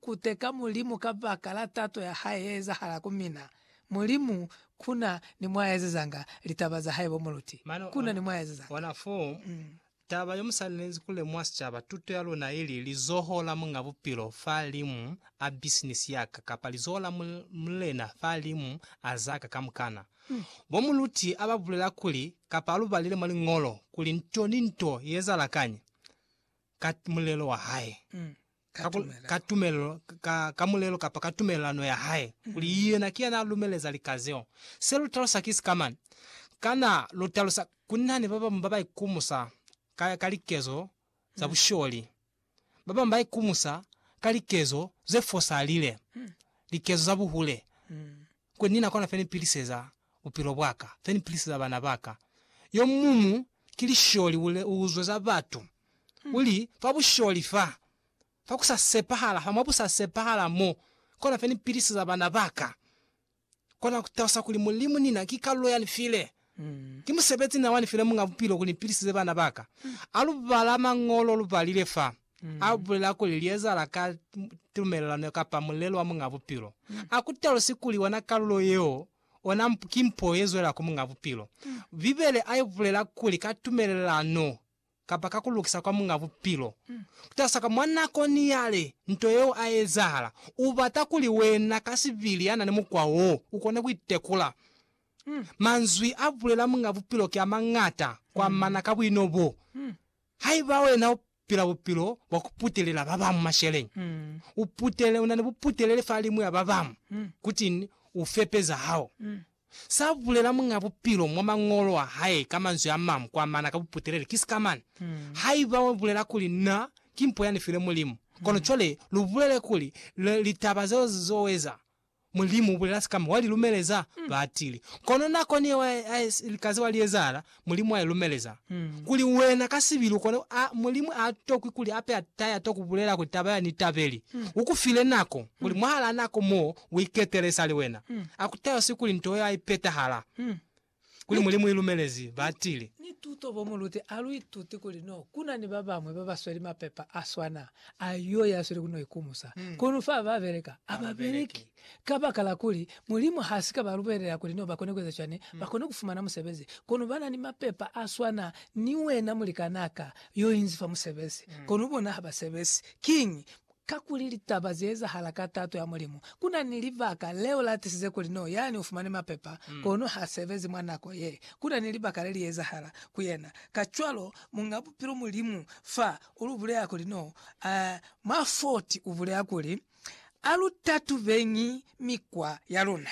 Kuteka Mulimu kabakala tato ya Hae yeezahala ku mina. Mulimu, kuna ni mwaezezanga litaba za Hae bo muluti. Mane Kuna ni mwaezezanga. ona fo taba yomusalinezi kulemuha sicaba, tuto ya luna ili, lizoho la Muñ'a Bupilo fa limu a bisinisi yaka, kapa lizoho la Mulena fa limu a zaka kamukana. Bo muluti aba bulela kuli, kapa alu balile mwa Liñolo, kuli nto ni nto yeezahala kañi ka mulelo wa Hae. ka, ku, ka tumelelo, ka, ka mulelo kapa ka tumelelano ya hae, kuli yena ki yana lumeleza lika zeo. Se lu talusa ki sika mani? Kana lu talusa kuli nani ba bamu ba ba ikumusa ka, ka likezo za busholi? Ba bamu ba ikumusa ka likezo ze fosalile, likezo za buhule. kuli Ni na kona fe ni piliseza bupilo bwa ka, fe ni piliseza bana ba ka. Yo mumu ki lisholi u uzwe za batu, uli, Fa busholi fa, fa ku sa sepahala fa, mwa bu sa sepahala mo, kona fe ni piliseza bana ba ka. Kona ku talusa kuli Mulimu ni na ki kalulo ya ni file. Ki musebezi na wani fela Muñ'a Bupilo kuli mpilisize bana ba ka. A lu bala Mañolo lu balile fa a bulela kuli li ezahala ka tumelelano kapa mulelo wa Muñ'a Bupilo. A ku talusi kuli ona kalulo yeo ona ki mpo ye zwela ku Muñ'a Bupilo. Bibele a i bulela kuli ka tumelelano kapa ka ku lukisa kwa Muñ'a Bupilo, kutasa ka mwa nako ni yale nto yeo a ezahala, u bata kuli wena ka sibili ya na ni mukwa wo, u kone ku itekula. Manzwi a bulela Muñ'a Bupilo ki a mañata ku amana ka buino bo. Haiba wena u pila bupilo bwa ku putelela ba bañwi masheleñi, u putele, u na ni buputeleli fa limu ya ba bañwi, kutiñi? U fepe za hao. Sa bulela Muñ'a Bupilo mwa Mañolo a hae ka manzwi a mañwi kwa mana ka buputeleli ki sika mane. Haiba wa bulela kuli Na ki mpo ya ni file Mulimu, kono cwale lu bulele kuli le, litaba zeo ze zo eza, Mulimu u bulela sika mane, wa li lumeleza batili. Kono nakoni yeo a, a, a si lika zeo a li ezahala, Mulimu a i lumeleza. Kuli wena ka sibi lukone a, Mulimu a tokwi kuli ape ya ta ya to kubulela kuli taba ya ni tabeli. U ku file nako, kuli mwahalaa nako mo u iketele sa li wena. A ku tayosi kuli nto yeo a i petahala. Kuli Mulimu i lumelezi, ba tili. Ni tuto bo mu lute a lu ituti kuli no kuna ni ba bamwe ba ba sweli mapepa a swana a yo ya sweli ku no ikumusa. Kono fa ba beleka, a ba beleki. Kabakala kuli Mulimu ha si ka ba lubelela kuli no ba kone kueza cwani, ba kone ku fumana musebezi. Kono ba na ni mapepa a swana ni wena mulikanaa ka yo inzi fa musebezi, kono bona ha ba sebezi. Kiñi? Kakuli litaba ze ezahala ka tato ya Mulimu. Ku na ni libaka leo la tisize kuli no yani u fumane mapepa, kono ha sebezi mwa nako ye. Ku na ni libaka le li ezahala ku yena. Kacwalo, Muñ'a Bupilo Mulimu fa u lu bulela kuli no, mwa 40 u bulela kuli, A lu tatubeñi mikwa ya luna.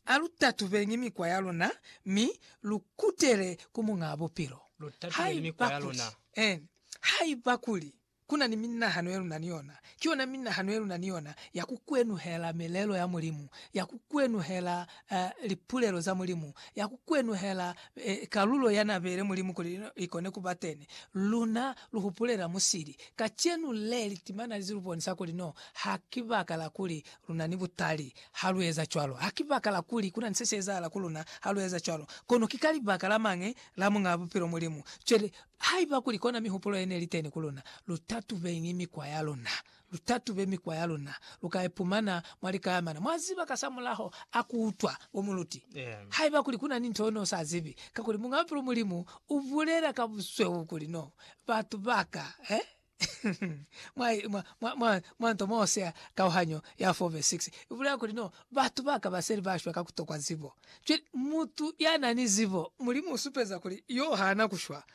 A lu tatubeñi mikwa ya luna mi lu kutele ku Muñaa Bupilo. Haiba kuli, en, haiba kuli ku na ni minahano ye lu na ni yona, ki yona minahano ye lu na ni yona ya ku kwenuhela milelo ya Mulimu, ya ku kwenuhela lipulelo za Mulimu ya ku kwenuhela kalulo ya n'a beile Mulimu kuli li kone ku ba teni. Luna lu hupulela musili kacenu le li timana li lu bonisa kuli no ha ki baka la kuli lu na ni butali ha lu eza cwalo. Ha ki baka la kuli ku na ni se si ezahala ku luna ha lu eza cwalo, kono ki ka libaka la mañi? La Muñ'a Bupilo Mulimu. Cwale, haiba kuli kona mihupulo ye ne li teni ku luna, lu tatubeñi mikwa ya luna. lu tatube mikwa ya luna, lu ka ipumana mwa likayamana. Mwa ziba kasamulaho a ku utwa bo muluti, haiba kuli ku na ni nto yo no sa zibi, kakuli Muñ'a Bupilo Mulimu u bulela ka busweu kuli no batu ba ka mwa, mwa, mwa, mwa, mwa nto mo sea kauhanyo ya 4 vesi 6, u bulela kuli no batu ba ka ba seli ba shwa ka ku tokwa zibo. Cwale, mutu ya na ni zibo, Mulimu u supeza kuli yo ha na ku shwa.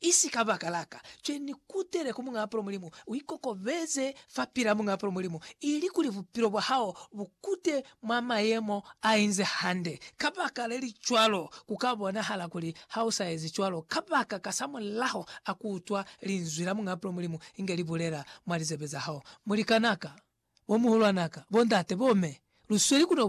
Isi ka baka la ka, cwe ni kutele ku Muñaa Palo Mulimu, u ikokobeze fa pila Muñaa Palo Mulimu, ili kuli bupilo bwa hao bu kute mwa mayemo a inze hande. Ka baka le li cwalo, ku ka bonahala kuli ha u sa ezi cwalo, kabaka kasamulaho a ku utwa Linzwi la Muñaa Palo Mulimu inge li bulela mwa lizebe za hao. Mulikanaka, bomuhulwanaka, bondate, bomme, lu sweli ku no